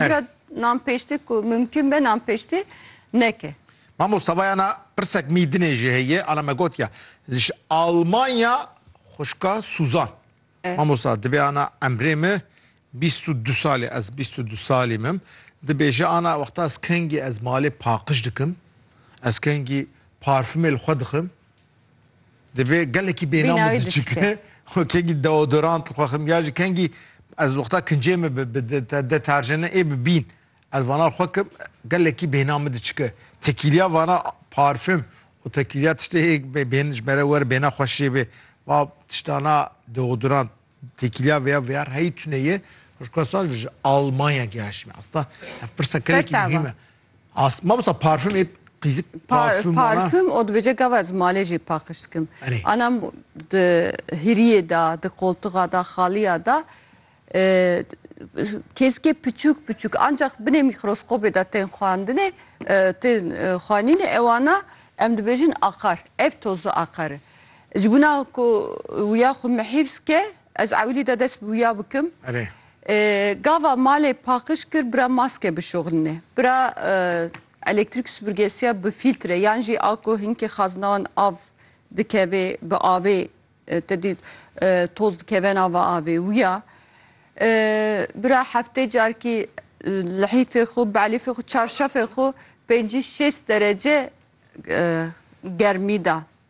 Pîra nan pêştê ku mumkin be nan pêştê neke. Mamo Savayana pirsek mî dinê jî heye ala me gotiya li ji Almanya xuşka Suzan. Eh. Mamosa dibê ana emrê me bîst û du salê ez bîst û du salî mim dibêje ana wexta ez kengî ez malê paqij dikim ez kengî parfumê li xwe dixim Divê gelekî bênam Bînayê diçike. diçike. Xwe kengî deodorant li xwe xim ya ji kengî ez wexta kincê min bi bi de- te- deterjene ê bi bîn ez vana li xwe kim gelekî bêhna min diçike. Tekîliya vana parfüm û tekîliya tiştê hê bê- bêhn ji me re were bêhna xweş jê bê. Va tiştana deodorant tekîliya vêya vêya heyî tune ye. Ji ku sal ji Almanya gihaşîme. Asta ev pirsa Ser gelekî çawa? muhîm e. As mawsa parfüm ê qîzik parfüm wana. Parfüm o dibêje gava ez malê jî paqij dikim. Erê. Ana di hiriyê da, di koltuxa da, xaliya da e, kêzikê piçûk piçûk ancak binê mîkroskopê da tên xwendinê, e, tên e, xwenînê ewana em dibêjin aqar. Ev tozu aqari. Ji bo na ku wiya xwe mihîfz ke Ez ewilî de dest bi wîya bikim. Erê. Gava malê paqiş kir bira maske bişoxlinê. Bira elektrîk supurgesiya bi fîltre yan jî a ku hinkê xazina wan av dikevê bi avê te dî toz dikeve nava avê wîya. Bira heftê carkî lihîfê xwe belîfê xwe çarşefê xwe pêncî şêst derece germî da.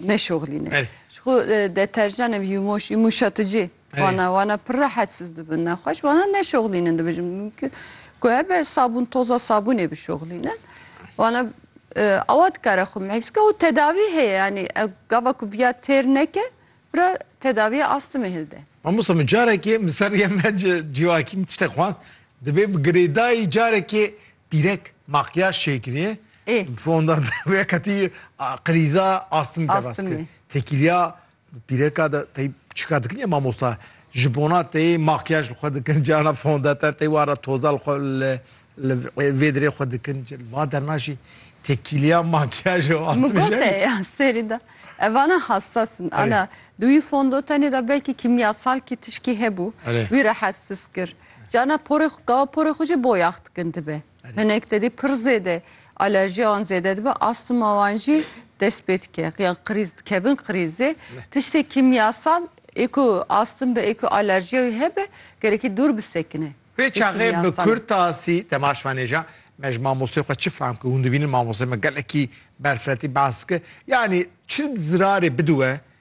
Neşoxlîne. Berê. Ji xwe e, deterjan ev yûmoş, yûmuşaticî. Berê. Wana wana pir rehetsiz dibin nexweş. Wana neşoxlînin dibijin. Mümkün ku hebe sabûn toza sabûnê bişoxlînin. Wana e, awa dikare xwe mehîf bike û tedavî heye yanî e, gava ku viya têr neke bira tedaviya astimi hilde. Mamosta min carekê min ser yeme ci civakî min tiştek xwend dibê bi girêdayî carekê Pîrek makyaj çêkirî fonda wê qetî qirîza astim ke bes kir. Tekîlya pîreka de tey çika dikin ya mamosta ji bona tey makyaj li xwe dikin carna fondater tey wan re toza li xwe li li vê dirê xwe dikin cil va derna jî tekîlya makyaj û astimi jî. Min got te ya serî de evana hassas in ana di wî fondotenê de belkî kîmyasalkî tişkî hebû wî rahatsiz kir. Ca ne porê xwe gava porê xwe jî boyax dikin dibe. Hinek tedî pir zêde alerjiya wan zêde dibe, astuma wan jî dest pê dike. Qiyan qirîz dikevin qirîzê. Tiştê kîmyasal ê ku astim be ê ku alerjiya wî hebe gerekî dûr bisekine. Vê çaxê bi kurtasî te ma şvanêja me ji mamosteyê xwe çi fehm kir? Hûn dibînin mamosteyê me gelekî berfirehti behs dike. Yanî çi zirarê bidiwe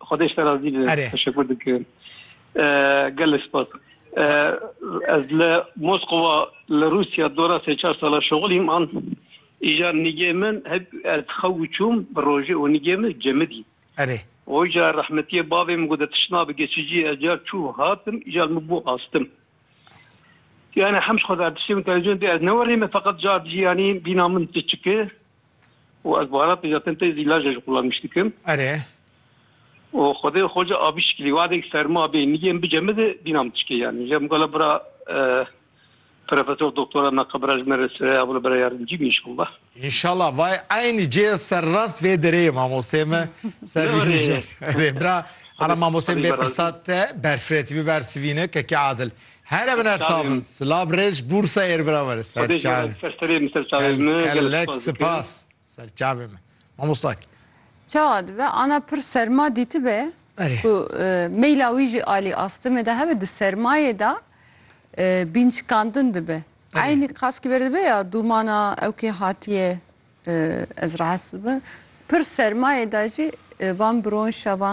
Xwedê ji te razî be. Erê. Teşekur dikim. Eh, Gelê spas. Eh, Ez li Moskova li Rûsya dora sê çar sala şoxilî man. Îja nigê min hep ez xew û çûm bi rojê û nigê min cemidî. Erê. Oja rehmetiyê bavê min gote tişna bi geçiciyê ez car çû hatim îja li min bû astim. Yani hem ji xwe ver tiştê min televîzyonê dê ez newerîme feqet car dijî yanî bîna min ti çiki. û ez baharatê zaten tê zî laje ji xwe lawiş dikim. Erê. û Xwedê xwe ji avî şikilî wadek serma bê nigê min bicemi di dîna min tişkê yanî je migala bira Profesor Doktora me qebira ji me re sireya bila bira yardimcî bî înşallah. Înşallah vay eynî cê serrast vê derê ye mamosteyê me ser rî je. Erê bira ala mamosteyê min bê pirsa te berfirê tîbî ber sivîne kekê Adil. Here bi nersa bin. Silav rêç bûr seyêr biraver. Xwedê ji we re serserê min serçavê min. Gelek sipas serçavê min. Mamosta kî? Çawa dibe? Ana pir serma dîtibe ku meyla wî jî alî astimê de hebe di sermayê de bînçikandin dibe. Eynî qaskî ber dibe ya dûmana ew kê hatiye ez rahes dibim. Pir sermayê de jî van bironşa van